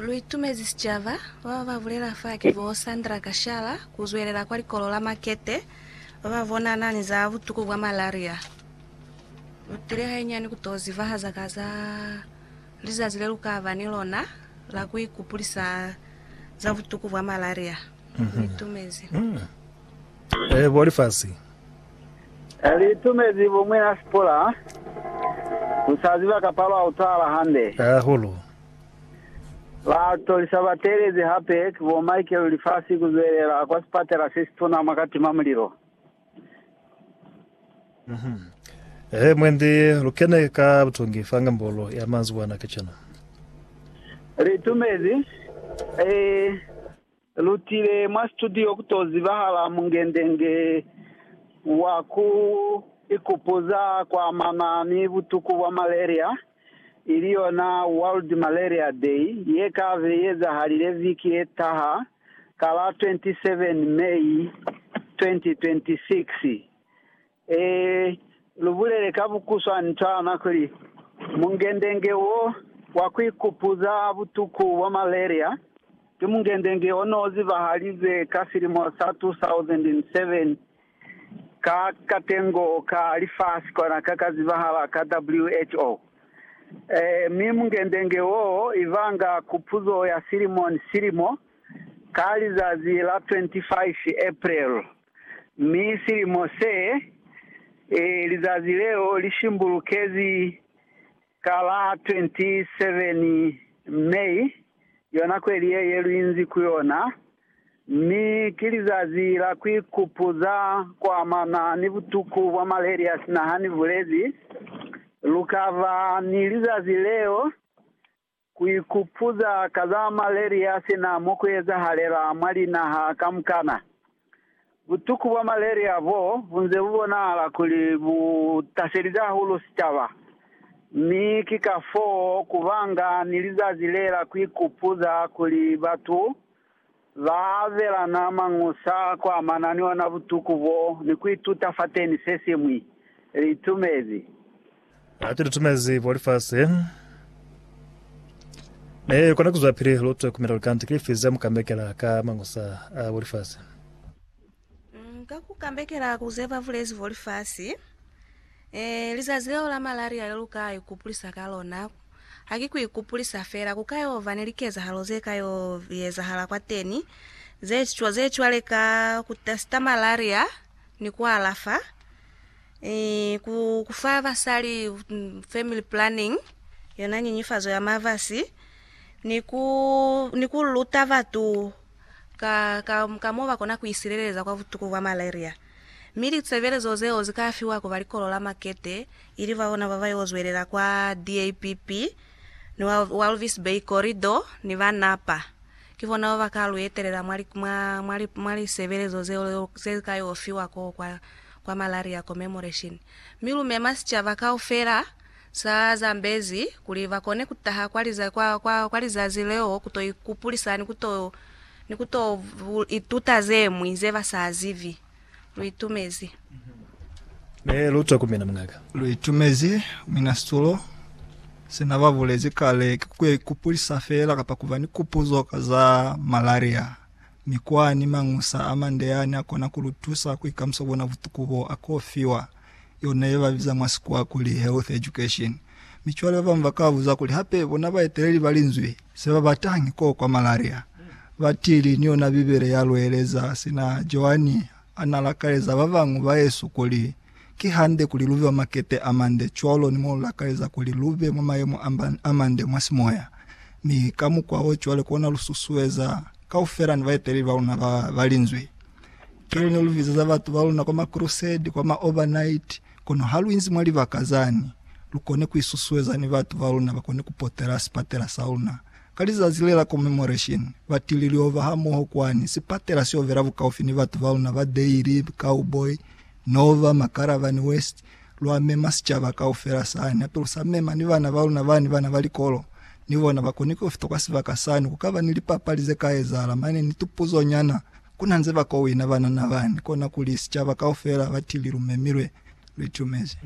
Lu itumezi sicaba. Ba ba ba bulela fa ki bo Sandra Kashala, ku zwelela kwa likolo la Makete, ba ba bonana ni za butuku bwa malaria. Lu tile hainyani ku to zibahaza ka za lizazi le lu ka ba ni lona la ku ikupulisa za butuku bwa malaria. Lu itumezi. Ee, bo lifasi. Li itumezi bo Mwina Sipula, Ku sa ziba kapa lwa utwahala hande. Hahulu. Ba tolisa batelezi hape ki bo Michael Lifasi ku zwelela kwa sipatela se situna mwa katima mulilo. He, mwendi lu kene ka butongi fa ngambolo ya manzibwana kacenu. Li itumezi, ee. Lutile mwa situdiyo ku to zibahala mungendenge wa ku ikupuza kwa mama mi butuku bwa malaria, ili yona World Malaria Day, ye ka be i ezahalile viki ye taha ka la 27 May 2026. Ee, lu bulele ka bukuswanityana kuli, mungendenge wo wa ku ikupuza butuku bwa malaria ki mungendenge o n'o zibahalize ka silimo sa 2007 ka katengo ka lifasi kona ka ka zibahala ka WHO. Ee, mi mungendenge wo i banga kupuzo ya silimo ni silimo ka lizazi la 25 April. Mi silimo se, e, lizazi leo li shimbulukezi ka la 27 May, yona kweli ye, ye lu inzi ku yona. Mi ki lizazi la ku ikupuza kwa amana ni butuku bwa malaria sina ha ni bulezi, Lu ka ba ni lizazi leo. Ku ikupuza ka za malaria si na mo ku ezahalela mwa linaha kamukana. Butuku bwa malaria bo bu nze bu bonahala kuli bu taselize hahulu sicaba, mi ki kafoo ku banga ni lizazi le la ku ikupuza kuli batu Ba abelana mañusa a ku amana ni ona butuku bo ni ku ituta fateni se siñwi. Litumezi. Hati litumezi bo lifasi, ne kona kuzwapili lutwe ku mela lukande ki lifi ze mu ka mekela ka mañusa a bo lifasi. Mm, ka ku kambekela ku ze ba bulezi bo lifasi, eh, lizazi leo la malaria le lu ka ikupulisa ka lona, ha ki ku ikupulisa fela, ku ka yo ba ni likezahalo ze ka yo ezahala kwateni, ze, cwa- ze cwale ka ku testa malaria ni ku alafa, eh, ku, ku fa basali mm, family planning, yona nyinyifazo ya mabasi, ni ku, ni ku luta batu ka, ka, ka mo ba kona ku isileleza kwa butuku bwa malaria. Mi litsebelezo zeo zi ka fiwa ku ba likolo la makete, ili ba bona ba ba yo zwelela kwa DAPP ni wa Walvis Bay Corridor ni ba Napa. Ki bona ba ba ka lu etelela mwa, mwa, mwa, mwa lisebelezo zeo ze li ka yo fiwa koo kwa, kwa Malaria Commemoration. Mi lu mema sicaba kaufela. Sa zambezi kuli ba kone ku taha kwa liza, kwa, kwa, kwa lizazi leo ku to ikupulisa ni ku to, ni ku to ituta ze ñwi ze ba sa zibi. Lu itumezi. Ne lu twa ku mina, mungaka. Lu itumezi, Mina Situlo. Se na ba bulezi kale ki ku yo ikupulisa fela, kapa ku ba ni kupuzo ka za malaria. Mikwa ni mañusa a mande yani a kona ku lu tusa ku ikamusa bona butuku bo a k'o fiwa, yona ye ba biza mwa Sikwa kuli health education. Mi cwale ba bañwi ba ka buza kuli, Hape bona baeteleli ba Linzwi se ba batañi k'o kwa malaria? Batili ni yona Bibele ya lu eleza sina Joani A na lakaleza ba bañwi ba yesu kuli, Ki hande kuli lu be mwa makete a mande cwalo ni mo lu lakaleza kuli lu be mwa mayemo a mande mwa simoya. Mi ka mukwa wo cwale kona lu susueza kaufela ni baeteleli ba luna ba ba linzwi. Cwale ne lu bizeza batu ba luna kwa ma crusade, kwa ma overnight, kono ha lu inzi mwa libaka zani, lu kone ku isusueza ni batu ba luna ba kone ku potela sipatela sa luna. Ka lizazi le la Commemoration, ba tili liho ba hamoho kwani sipatela seo bela bukaufi ni batu ba luna ba Dairy, Cowboy, Nova, Makaravani West, lwa mema sicaba kaufela sani, hape lu sa mema ni bana ba luna bani bana ba likolo, ni bona ba koni ku fita kwa sibaka sani, ku kaba ni lipapali ze ka ezahala mane ni tupuzo nyana, kuna nze ba kowina banana bani, kona kuli sicaba kaufela ba tili lu memilwe, lu itumezi.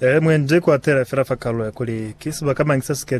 Ee, mwendi ku atela fela fa kalulo ya kuli ki sibaka mañi se si ke